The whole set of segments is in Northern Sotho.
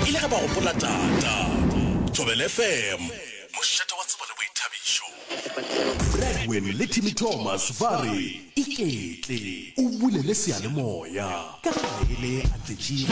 E le ge ba gopola Tata. Thobela FM, mošate wa tsebo le boithabišo. Bradwin le Timmy Thomas ba re, Iketle o bulele seyalemoya, ka ge ga e le Atletšiki.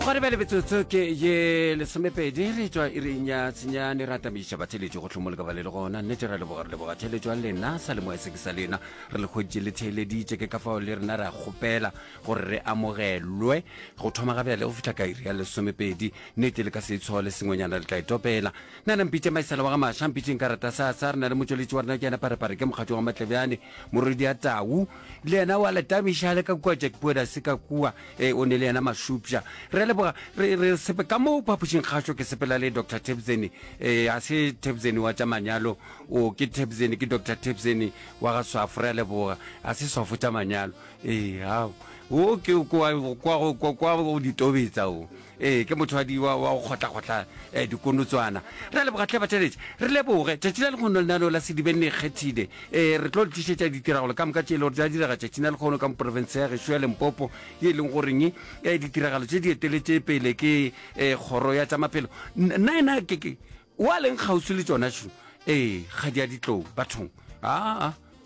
Go re bjale metsotso ke ye lesomepedi re tšwa iring ya tsenyane re atamiša batheeletši go hlomoleka ba le le gona nnete ra leboga re leboga theeletšo ya lena sa lemoya se ke sa lena re le kgweditše le theeleditše ke ka fao le rena re a kgopela gore re amogelwe go thoma ga bjale go fihla ka iri ya lesomepedi nnete le ka se itshogo le sengwenyana le tla itopela nna na mpitše maisela wa ga maša mpitše nka rata sa sa re na le motšweletši wa rena ke yena parepare ke mokgatšo wa matlebjane morwedi ya tau le yena wa letamiša le ka kua jack poeda se ka kua e o ne le yena mašupša re a leboga re re sepe ka moo phapošing kgašo ke sepela le dr tebzeni e a se tebzeni wa tša manyalo o ke tebzeni ke dr tebzeni wa ga swafo re a leboga a se swafo tša manyalo ee ao o ke kwa go ditobetsa o ee ke motho wa go kgotlakgotlha um eh, dikonotswana re a leboga tlhe batšheletše re leboge tšatši la lekgono le nano la sedibeng ne kgethile um eh, re tlo le tlišetša ditiragalo ka moka tše e le gore ja direga tšatši na lekgono ka moporofense ya gešo ya lempopo ye e leng goreng um eh, ditiragalo tše di eteletše pele ke um kgoro ya tša maphelo nna ena keke wa leng kgauswi le tsona šo ee ga di a ditlou bathong aa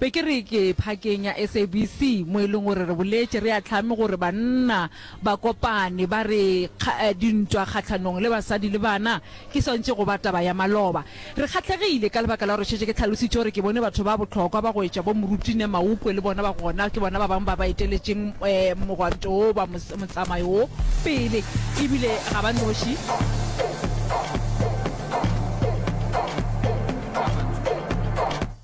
Be ke re ke phakeng ya SABC mo e leng gore re boletše re ahlame gore banna ba kopane ba re kga dintwa kgahlanong le basadi le bana ke swantše go ba taba ya maloba. Re kgahlegile ka lebaka la gore šetše ke hlalositše gore ke bone batho ba bohlokwa ba go etša bo Moruti Neh Maupwe le bona ba gona, ke bona ba bangwe ba ba eteletšeng mogwanto wo ba motsamayo wo pele e bile ga ba noši.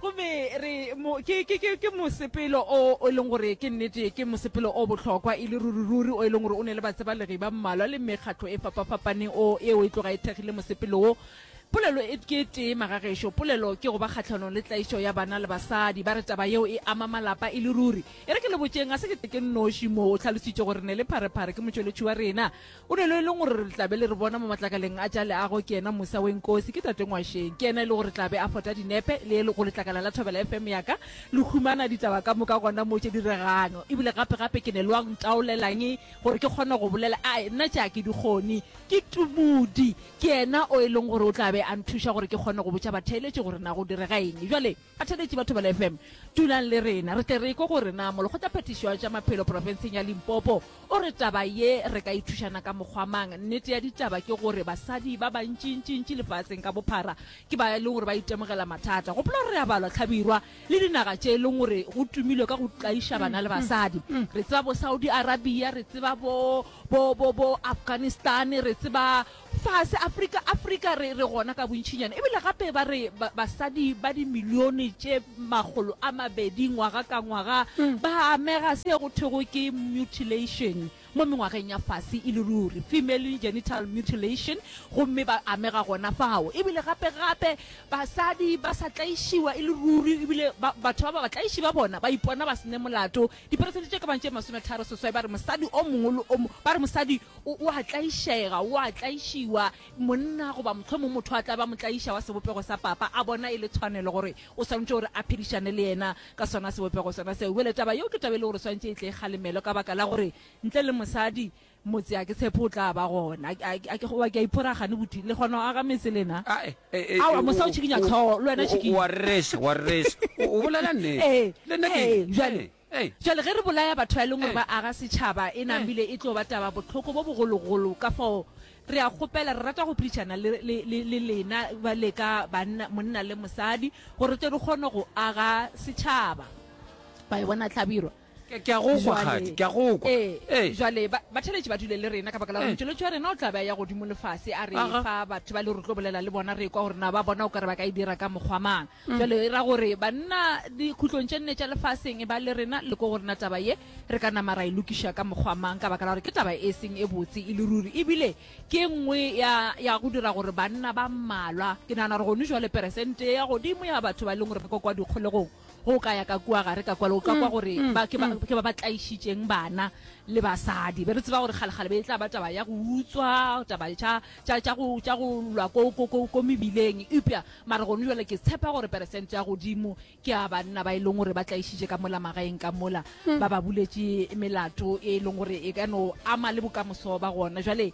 go be re mo ke ke ke ke mosepelo o o leng gore ke nnete ke mosepelo o bohlokwa e le ruri ruri o e leng gore o ne le batsebalegi ba mmalwa le mekgatlo e fapafapaneng o eo e tloga e thekgile mosepelo wo polelo e ke tee magagešo polelo ke go ba kgatlhanong le tlaišo ya bana le basadi ba re taba yeo e ama malapa e le ruri e re ke le botšeng ga se ke tle ke nnoši moo o tlhalositše gore ne le pharephare ke motšweletši wa rena O ne lo e leng gore re tla be le re bona mo matlakaleng a tša leago ke yena Musa Wenkosi, ke Tate Ngwasheng. Ke yena e le gore tla be a fota dinepe le go letlakala la Thobela FM ya ka. Le humana ditaba ka moka gona mo tše diregang. E bile gape-gape ke ne lo a ntaolelang gore ke kgone go bolela. Ai, nna tše a ke di kgone. Ke Tumudi. Ke yena o e leng gore o tla be a nthuša gore ke kgone go botša batheeletši gore na go direga eng. Bjale, Bathaletši ba Thobela FM, dulang le rena, re tle re ekwe gore na Molokgotlaphethiši wa tša Maphelo profenseng ya Limpopo o re taba ye re ka e thušana ka mokgwa mang. Nnete ya ditaba ke gore basadi ba bantšintšintši lefaseng ka bophara ke ba e leng gore ba itemogela mathata. Gopola gore re a balwa hlabirwa le dinaga tše e leng gore go tumilwe ka go tlaiša bana le basadi. Re tseba bo Saudi Arabia, re tseba bo bo bo bo Afghanistan, re tseba Fase Afrika, Afrika re, re gona ka bontšhinyana. Ebile gape ba re ba, basadi ba dimilione tše makgolo a mabedi ngwaga ka ngwaga mm. ba amega se go thwego ke mutilation mo mengwageng ya fase e le ruri female genital mutilation gomme ba amega gona fao ebile gape-gape basadi ba sa tlaišiwa e le ruri ebile batho ba ba batlaiši ba bona ba ipona ba sene molato Diperesente tše ka bago tše masometharo seswai ba re mosadi o mongwe le o mongwe, ba re mosadi o, o a tlaišega, o a tlaišiwa, monna goba mohlomong motho a tla ba motlaiša wa sebopego sa papa, a bona e le tshwanelo gore o swanetše gore a phedišane le yena ka sona sebopego sona seo. Bjale taba yeo ke taba e le gore swanetše e tle e kgalemelwe ka baka la gore ntle le mosadi Motse, a ke tshepe o tla ba gona. A, a, a ke go, wa ke a iphora gane botwi. Le kgona go aga metse lena? A, e, e, e, Aowa, mosa o o, tšhikinya o, tlhogo, le wena o, o, tšhikinya. o a rereša, o a rereša. O, o bolela nnete. Ee, Le nna ke, ee, jwale, ee, ee. jwale ge re bolaya batho ba e leng gore Ee. ba aga setšhaba, e Ee. namile e tlo ba taba bohloko bo bogologolo. Ka fao re a kgopela, re rata go phedišana le, le, le, le lena ba le ka banna, monna le mosadi, gore re tle re kgone go aga setšhaba. Wa e bona hlabirwa? Ke, ke a go kwa, Jwale, kgadi, ke a go kwa. ee, Ee. jwale ba, batheletši ba dule le rena ka baka la gore Ee. motšweletši wa rena o tla be a ya godimo lefase a re Aga. fa batho ba le re tlo bolela le bona re kwa gore na ba bona o ka re ba ka e dira ka mokgwa mang Mm. jwale e ra gore banna dikhutlong tše nne tša lefaseng e ba le rena le ko gore na taba ye re ka nama ra e lokiša ka mokgwa mang ka baka la gore ke taba e seng e botse e le ruri ebile ke e nngwe ya, ya go dira gore banna ba mmalwa ke nagana gore gone jwale peresente ya godimo ya batho ba e leng gore ba kwa kwa dikgolegong ge o ka ya ka kua gare ka kwale o ka kwa mm, gore mm, ba ke ba mm. ke ba ba tlaišitšeng bana le basadi be re tseba gore kgalekgale be e tla ba taba ya go utswa taba tša tša- tša go tša go lwa ko ko- ko- ko mebileng eupša mare gone jale ke tshepa gore peresente ya godimo ke a banna ba e leng gore ba tlaišitše ka mola magaeng ka mola ba ba buletše melato e leng gore e ka no ama le bokamoso ba gona jale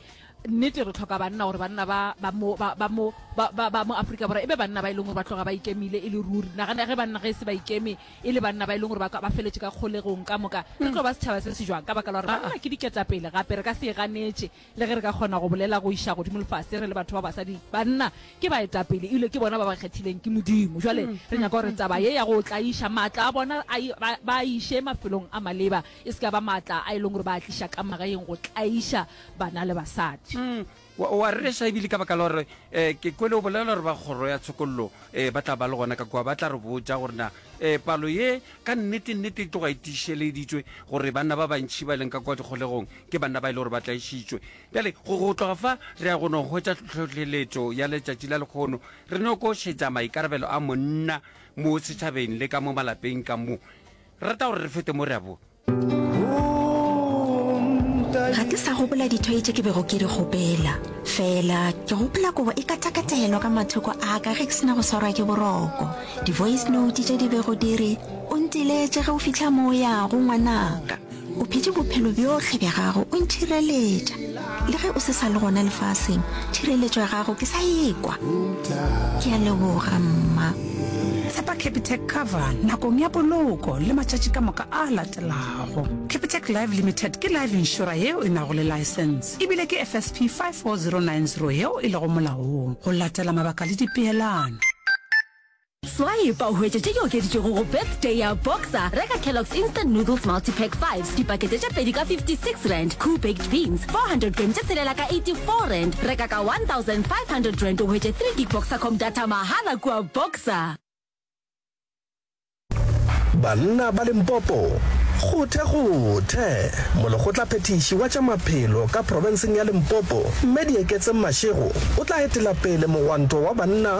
Nnete, re tlhoka banna gore banna ba ba mo ba ba mo ba ba ba mo Afrika Borwa e be banna ba e leng gore ba tloga ba ikemile e le ruri. Nagana ge banna ge e se ba ikeme e le banna ba e leng gore ba ka ba feletše ka kgolegong ka moka, re tlo ba setšhaba se se jwang? Ka baka la gore banna ke diketapele, gape re ka se e ganetše. Le ge re ka kgona go bolela go iša godimo lefase re le batho ba basadi, banna ke baetapele e bile ke bona ba ba kgethileng ke Modimo. Bjale re nyaka gore taba ye ya go tlaiša maatla a bona a e ba ba a iše mafelong a maleba e se ka ba maatla a e leng gore ba a tliša ka magaeng go tlaiša bana le basadi. Mm, wa, wa rereša ebile ka baka la gore um ke kwele o bolela gore ba kgoro ya tshokololo um ba tla ba le gona ka kua ba tla re botja gore na um palo ye ka nnete nnete e tloga e tišeleditswe gore banna ba bantšhi ba e leng ka kua dikgolegong ke banna ba e le gore ba tlaišitšwe bjale go go tloga fa re ya go no hwetša tlhohleletšo ya letšatši la lekgono re no ko šetša maikarabelo a monna mo setšhabeng le ka mo malapeng ka mo rata gore re fete mo re a bo ga ke sa gopola dithoi tše ke bego ke di gopela fela ke gopola kobo e katakatelwa ka mathoko a ka ge ke sena go swarwa ke boroko di-voice note tše di bego di re o ntiletše ge o fitlha mo o yago ngwanaka o phete bophelo bjohle bja gago o ntšhireletša le ge o se sa le gona lefaseng thireletšo ya gago ke sa ekwa ke a leboga mma tshepa capitec cover nakong ya poloko le matšatši ka moka a latelago capitec live limited ke live insura yeo e nago le license ebile ke fsp 54090 yeo e lego molaong go latela mabaka le dipeelano Swipe o hwetše tše di okeditšwego go Birthday ya Boxer, reka Kellogg's Instant Noodles Multipack 5 dipakete tše pedi ka 56 rand, Koo Baked Beans 400 grams tše tshelela ka 84 rand, reka ka 1500 rand o hwetše 3 gig Boxercom data mahala kua Boxer. Banna ba Limpopo, Kgothe kgothe! Molekgotlaphethiši wa tša Maphelo ka profenseng ya Limpopo, Mme Dieketseng Mashego o tla etela pele mogwanto wa banna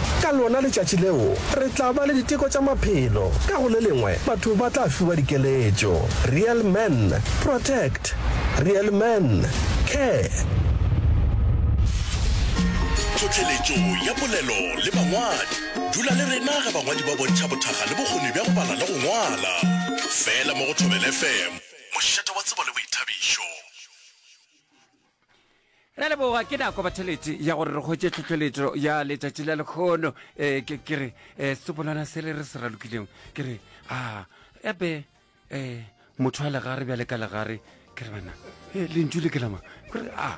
Ka lona letšatši leo, re tla ba le diteko tša maphelo, ka go le lengwe batho ba tla fiwa dikeletšo. Real Man, Protect! Real Man, Care! Tlhohleletšo ya polelo le bangwadi. Dula le rena ge bangwadi ba bontšha bothakga le bokgoni bja go bala le go ngwala. Fela mo go Thobela FM, mošate wa tsebo le boithabišo. Re a leboga, ke nako bathelete ya gore re kgwetše tlhohleletšo ya letšatši la lekgono. Eh, ke ke re eh, sepolwana se le re se ralokilego ke re a ebe eh, motho wa legare bjale ka legare ke re bana eh, lentšu le ke lama ke re a